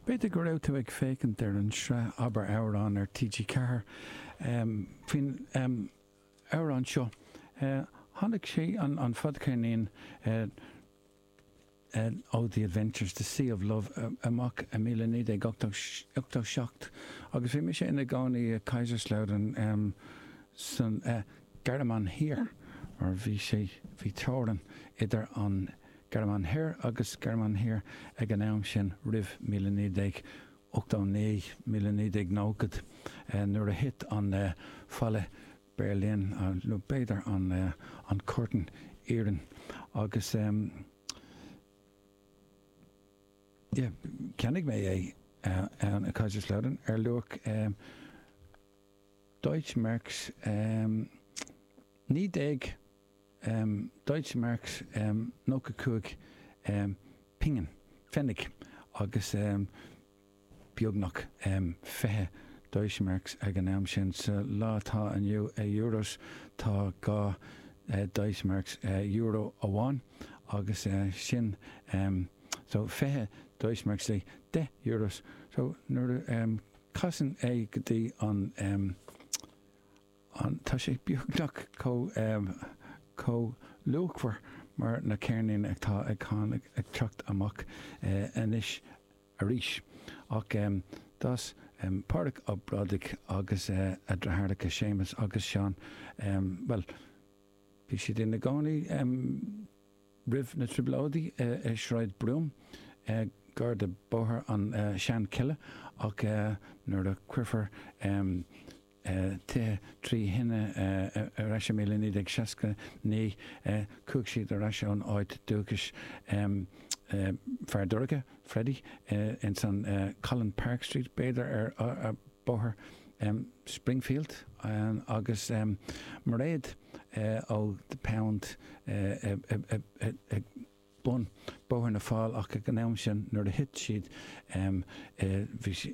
B'fhéidir go raibh tú ag féachaint ar an sraith Abair Amhrán ar TG4 faoin amhrán seo. Tháinig sé, an fadcheirnín ó The Adventures, The Sea of Love, amach i míle naoi déag ochtó seacht agus bhí mise i mo chónaí i Kaiserslautern sa Ghearmáin Thiar mar bhí sé, bhí teorainn idir an. Gearmáin Thoir agus Gearmáin Thiar ag an am sin, roimh míle naoi déag ochtó naoi míle naoi déag nóchad, nuair a thit an falla Berlin, nó b'fhéidir an curtain iarainn, agus yeah, cheannaigh mé é ann i Kaiserslautern ar luach Deutsche Marks naoi déag Deutsche Mark, 95 pingin, pfennig, agus beagnach 20 Deutsche Mark ag an am sin. Sa lá atá inniu, euros, tá dhá Deutsche Mark, euro amháin, agus sin, so, 20 Deutsche Mark is ea 10 euros. So, nuair a casann é go dtí an. Tá sé beagnach chomh luachmhar mar na ceirnín atá ag cách ag teacht amach anois arís. Ach d'fhás Pádraig Ó Brádaigh agus a dheartháireacha Séamus agus Seán, bhuel, bhí siad ina gcónaí roimh na Trioblóidí i Sráid Broom, gar do Bhóthar na Seanchille, ach nuair a cuireadh tithe trí thine ar ais i 1969. Chuaigh siad ar ais ón áit dúchais Feardorcha, Freddie, ins an Collin Park Street, b'fhéidir, ar Bhóthar Springfield agus Mairéad ó The Pound ag bun Bhóthar na bhFál ach ag an am sin nuair a thit siad bhí sí.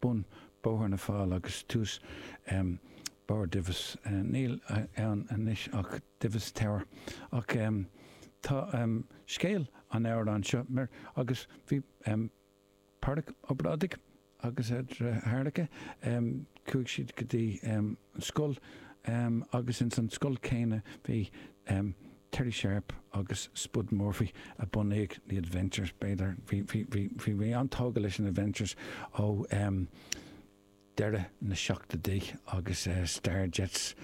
bun Bóthar na bhFál agus tús barr Divis. Níl ann anois ach Divis Tower. Ach tá scéal an amhráin seo mar agus bhí Pádraig Ó Brádaigh agus a dheartháireacha, chuaigh siad go dtí. an scoil agus ins an scoil céanna bhí Terry Sharpe agus Spud Murphy a bhunaigh The Adventures, b'fhéidir, bhí mé an-tógtha leis an Adventures ó deireadh na seachtóidí agus Starjets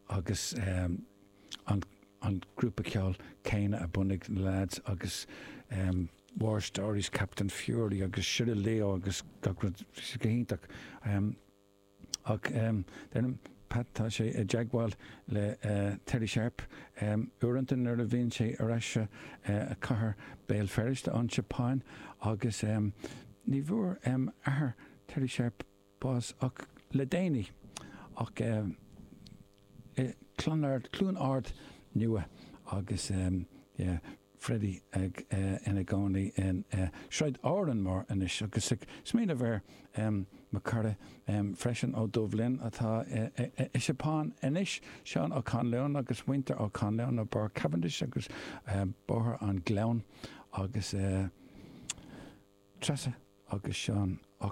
agus an grúpa ceoil céanna a bhunaigh na leaids agus War Stories, Captain Fury agus Shiraleo agus gach rud, bhí sé go hiontach. Ach, deirim, Pat, tá sé i dteagmháil le Terry Sharpe uaireanta nuair a bhíonn sé ar ais sa chathair Béal Feirste, ón tSeapáin, agus ní bhfuair athair Terry Sharpe bás ach le déanaí. Ach. Clonard, Cluain Ard Nua agus yeah Freddie ina gcónaí in Sráid Árann Mór anois agus ag smaoineamh ar mo chara freisin ó Dubh Linn atá i Seapáin anois, Seán Ó Conluain agus muintir Ó Conluain ó Bharr Cavendish agus Bóthar an Ghleann agus Treasa agus Seán Ó.